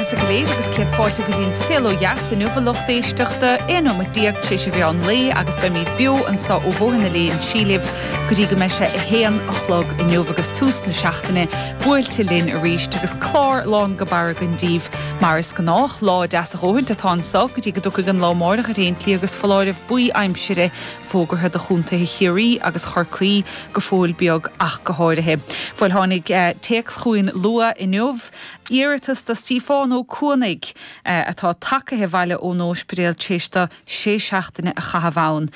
Is ag léamh agus céad fáilte go dtí an Saol Ó Dheas inniu a lucht éisteachta, 11 nóiméad tar éis an mheán lae agus beimid beo anso ó Bhóthar na Léinsí libh go dtí go mbeidh sé a haon a chlog inniu agus tús na seachtaine buailte linn arís agus clár lán go barr againn daoibh mar is gnách. Lá deas a dhóthaint atá anso go dtí go dtiocfaidh an lá amáireach ar aon tslí agus foláireamh buí aimsire fógartha do chontaetha Chiarraí agus Chorcaí go fóill beag ach go háirithe. Bhuel tháinig téacs chugainn luath inniu. Iarratas do Stiofán Ó Cuanaigh, atá tagtha abhaile ón óispidéal tar éis dó sé seachtaine a chaitheamh ann.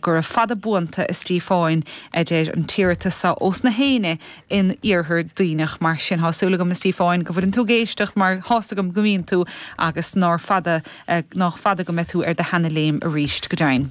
Gura fada buan tú, a Stiofáin, a deir an t-iarratas so ós na hAoine in Iarthar Duibhneach. Mar sin, tá súil agam, a Stiofáin, go bhfuileann tú ag éisteacht, mar thá's agam go mbíonn tú, agus nár fada, nách fada go mbeidh tú ar do sheana léim arís, go deimhin.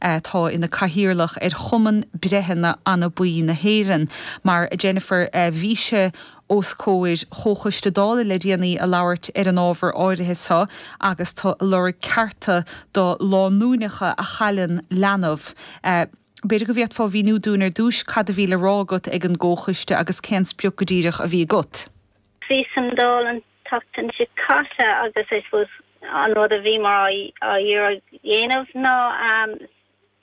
atá ina cathaoirleach ar Chumann Breitheanna Anabaí na hÉireann, mar Jennifer bhís os comhair Chomhchoiste Dála le déanaí ag labhairt ar an ábhar áirithe so agus tú ag lorg cearta do lánúineacha a chailleann leanbh. B'fhéidir go bhféadfá a mhíniú dúinn ar dtús cad a bhí le rá agat ag an gComhchoiste agus cén sprioc go díreach a bhí agat? Bhíos sa Dáil an. tseachtain seo caite agus I suppose an rud a bhíomar á iarraidh dhéanamh ná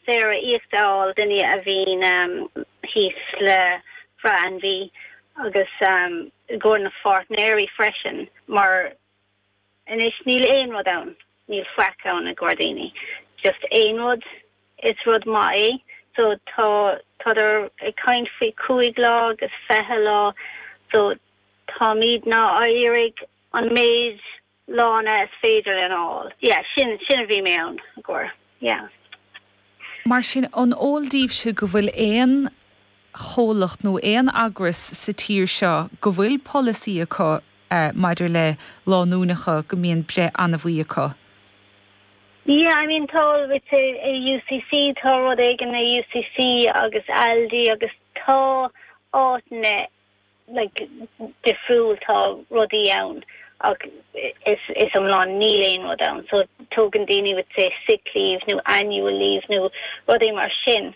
saoire íoctha a fháil do dhaoine a bhíonn thíos le breith anabaí agus i gcomhair na pháirtnéirí freisin mar anois níl aon rud ann, níl faic ann i gcomhair daoine, just aon rud. Is rud maith é. So tá táthar ag caint faoi cúig lá agus fiche lá. So táimidne ag iarraidh an méid lána is féidir linn a fháil. Yeah, sin sin a bhí mé ann i gcomhair. Yeah. Mar sin, an eol daoibhse go bhfuil aon chomhlacht nó aon eagras sa tír seo go bhfuil polasaí acu maidir le lánúineacha go mbíonn breith anabaí acu. Yeah, I mean tá I'd say i UCC, tá rud éigin i UCC agus Aldi agus tá áiteanna like difriúil, tá rudaí ann ach is is iomlán níl aon rud ann so tógann daoine I'd say sick leave nó annual leave nó rudaí mar sin.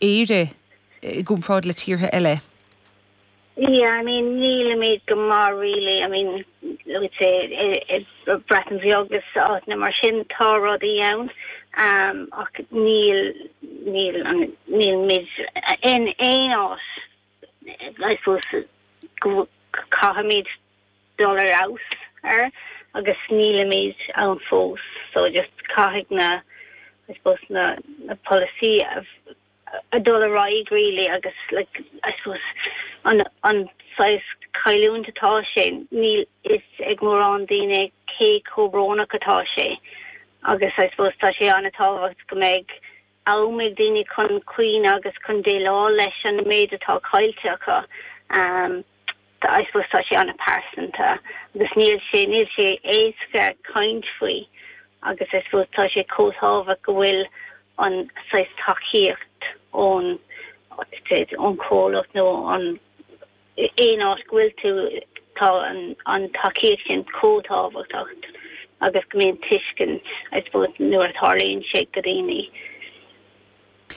Éire i gcomparáid le tíortha eile? Yeah, I mean, nílimid go maith really, I mean, I'd say, i Breatain Bheag agus áiteanna mar sin tá rudaí ann ach níl, níl, níl muid in aon áit. I suppose go caithfimid dul ar fheabhas air agus nílimid ann fós so just caithfidh na I suppose na na polasaí a dul ar aghaidh really agus like I suppose an an saghas cailliúint atá sin níl a fhios ag mórán daoine cé chomh brónach atá sé agus I suppose tá sé an-tábhacht go mbeidh am ag daoine chun caoineadh agus chun déileáil leis an méid atá caillte acu. I suppose tá sé an-pearsanta agus níl sé níl sé éasca caint faoi agus I suppose tá sé chomh tábhacht go bhfuil an saghas tacaíocht ón ón chomhlacht nó an aon áit go bhfuil tú, tá an tacaíocht sin chomh tábhachtach agus go mbíonn tuiscint, I suppose, nuair a tharlaíonn sé go daoine.